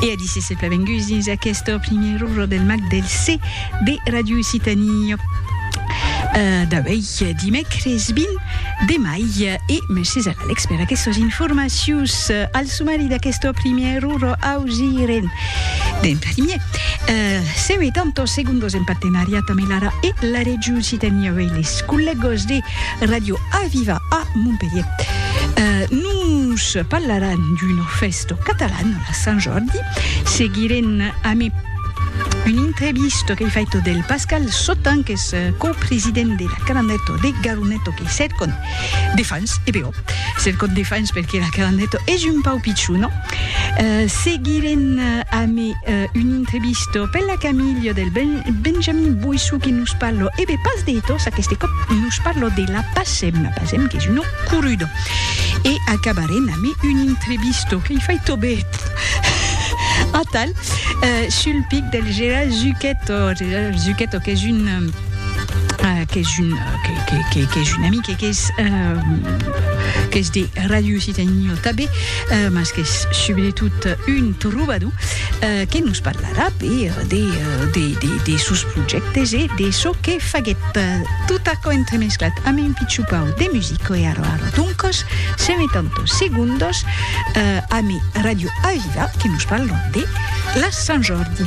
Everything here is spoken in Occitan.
E a disse se plavenguts dins aqueste primier urro del mag del C de Radio Occitanie. Euh, d'avei dimècres 20 de mai e mercés a l'Alex per aquestes informacions al sumari d'aqueste primier urro ausiren d'en primier. Euh, seu e tantos segundos en partenariat amb l'ARA e la Regió Occitanie, avei les collegos de Radio Aviva a Montpelhier nos parlaràn d'una fèsta catalana a Sant Jordi, seguirem amb un entrevista qu'ei faita del Pascal Sotan, que és copresident de la Calandeta de Garoneto, que cercon de fans, e però, cercon de fans perque la Calandeta és un pau pichona, Seguirem ame un intrevisto per la Camilio del Benjamin Boissou que nos parlo, e be pas de ethos aqueste còp, nos parlo de la Pacem, la Pacem qu'es una coruda. E acabarem ame un intrevisto que i fai tobet, atal, sul pic del Gera Zucchetto, Gera Zucchetto qu'es un qu'es un qu'es un amic e qu'es qu'es de Radio Occitanie Ota be. mas qu'es subretot un trobador que nos parlarà per de sos projèctes e de çò que faguèt. Tot aquò entremesclat amb un pichon pauc de music e ara ara doncas se metam tot segundos amb Ràdio Aviva que nos parlan de la Sant Jordi.